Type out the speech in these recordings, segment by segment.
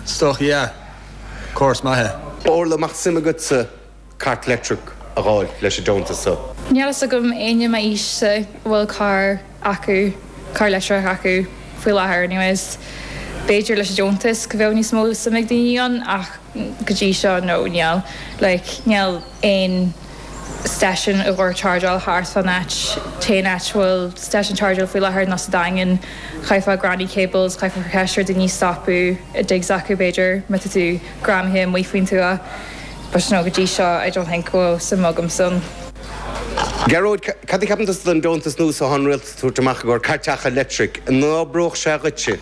Stoc, Yeah. Course maith. Orla, mbeadh suim agatsa cairt leictreach a dh'fháil leis an deontas so? Níl fhios agam éinne ar m'aois-sa a bhfuil carr acu, carr leictreach acu, faoi láthair anyways. B'fhéidir leis an deontas go mbeadh níos mó suim ag daoine ann ach go dtí seo no, níl. Like, níl. aon station i gcomhair chargeáil thart fán áit, tá an áit bhfuil station chargeáil faoi láthair nó sa Daingean, chaithfeá granny cables, chaithfeá ceistiú ar daoine stopadh i digs acu b'fhéidir má tá tú greamaithe amuigh faoin tuath but no go dtí seo I don't think go bhfuil suim agam ann. Gearóid, Cad a cheapann tusa den deontas nua so thá an Rialtas ag tabhairt amach i gcomhair cairteacha leictric, an n-oibreodh sé dhuitse?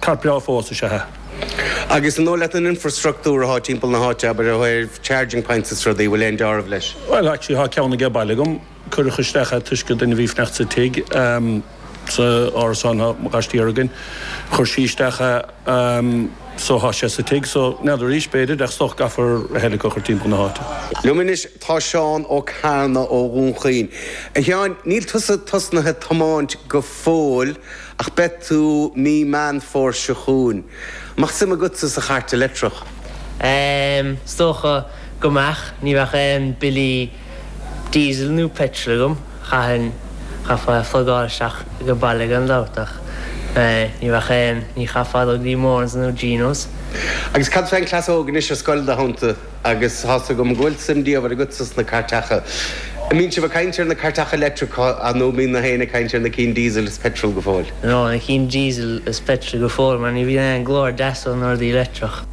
Thart breágh fós is ea é. Agus an dóigh leat an infrastruchtúr athá timpeall na háite, abair, ó thaobh charging points is rudaí, bhfuil aon dealramh leis? Bhuel, actually thá ceann ag baile agam, cuireadh isteach é toisc an duine a bhí ag fanacht sa tig, ehm, sa árasán, thá aíochtaí againn, chuir sí isteach é, ehm, so thá sé sa tig, so n'fheadar arís, b'fhéidir, ach is dócha go gcaithfear a thuilleadh a chur timpeall na háite. Liom anois tá Seán Ó Cearna ó Dhún Chaoin. A Sheáin, níl tusa tosnaithe ag tiomáint go fóill? Ach beidh tú mí Meán Fómhair seo chugainn. mbeadh suim agatsa sa Chairt Leictreach? Em, is dócha go mbeadh. Ní bheadh aon billí diesel nó petrol agam. Chaithfinn, chaithfeá é a phlugáil isteach ag an baile gan dabht ach, eh, ní bheadh aon, ní chaithfeá dul go dtí Moran's nó Gino's. Agus cad fén gcleas óg anois ar scoil, id theannta? Agus tá's agam go bhfuil suim diamhair agatsa sna cairteacha. An mbíonn sibh ag caint ar na cairteacha leictreacha nó an mbíonn gach éinne ag caint ar na cinn diesel is petrol go fóill? Nó na cinn diesel is petrol go fóill mar ní bhíonn aon glór deas ó na rudaí leictreach.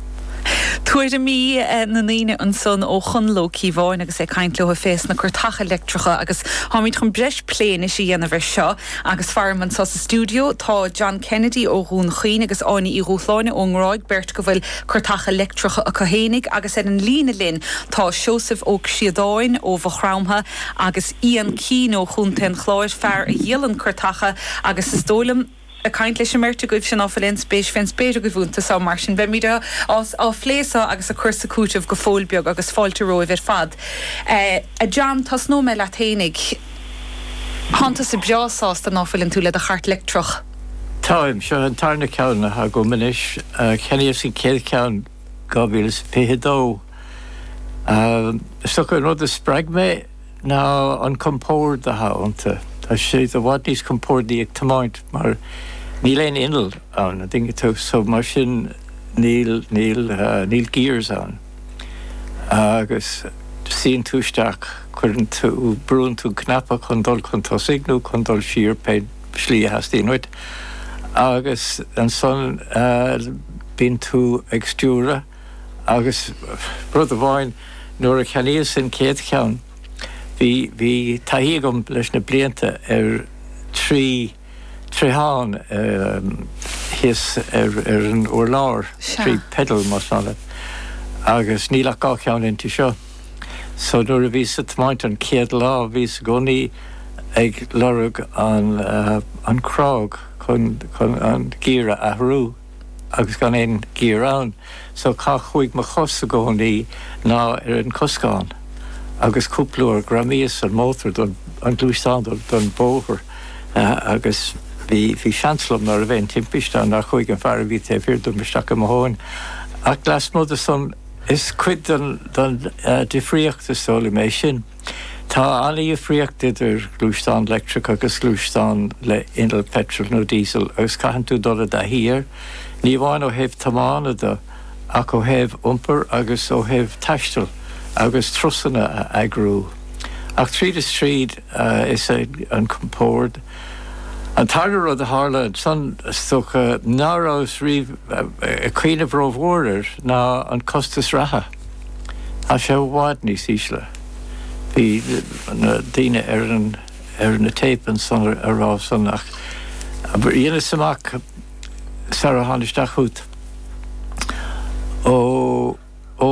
Tuairimí na ndaoine ansan ó Chonall Ó Ciobháin agus é ag caint leo fés na cairteacha leictreacha agus táimíd chun breis plé anois a dhéanamh air seo. Agus faram anso sa stiúideo tá John Kennedy ó Dhún Chaoin agus Áine Uí Dhubhshláine ón nGráig, beirt go bhfuil Cairteacha Leictreacha acu fhéinig agus ar an líne linn tá Seosamh Ó Críodáin ó Mhaigh Chromtha agus Ian Keane ó Chontae an Chláir, fear a dhíolann cairteacha agus is dóigh liom ag caint leis an mbeirt agaibh sin ná fuil aon spéis fén spéir agaibh ionta so mar sin beimíd á phlé so agus ag cur is ag cúiteamh go fóill beag agus fáilte romhaibh ar fad. A John, tosnóidh mé leat fhéinig. Tánn tusa breá sásta ná fuileann tú le do Chairt Leictreach. Táim, seo an tarna ceann atá agam anois, cheannaíos an chéad cheann 2022. Is dócha an rud a spreag mé ná an compord athá iontu. Tá sé i bhfad níos compordaí ag tiomáint mar níl aon inneall ann, an dtuigeann tú, so mar sin níl, níl, níl gears ann. Agus suíonn tú isteach, cuireann tú, brúann tú cnaipe chun dul chun tosaigh nó chun dul siar, pé. slí a theastaíonn uait agus ansan bíonn tú ag stiúradh agus rud amháin nuair a cheannaíos an chéad cheann bhí, bhí taithí agam leis na blianta ar trí, troitheán thíos ar, ar an urlár, trí pedal más maith leat agus níl ach dhá cheann inti seo. So nuair a bhíos ag tiomáint an chéad lá bhíos i gcónaí ag lorg an an crág chun chun an giar a athrú agus gan aon ghiar ann so cá chuaigh mo chos i gcónaí ná ar an coscán agus cúpla uair ghreamaíos an mótar don an gluaisteán don don bhóthar agus bhí bhí seans liom ná raibh aon timpiste ann nár chuaigh an fear a bhí taobh thiar dom isteach i mo thóin ach lasmuigh de san Is cuid den difríocht, is dóigh liom, é sin. Tá an-dhifríocht idir gluaisteán leictreach agus gluaisteán le inneall peitril nó diesel agus caitheann tú dul i dtaithí air, ní amháin ó thaobh tiomána de ach ó thaobh iompar agus ó thaobh taisteal agus turasanna a eagrú. Ach tríd is tríd. Is é an compórd an tarna rud a tharla ansan, is dócha, ná rabhas riamh ag cuimhneamh ró-mhór air, ná an costas reatha. Tá sé i bhfad níos ísle. Bhí na daoine ar an, ar na téip ansan á rá san ach dheineas amach sara thána isteach chút ó, ó,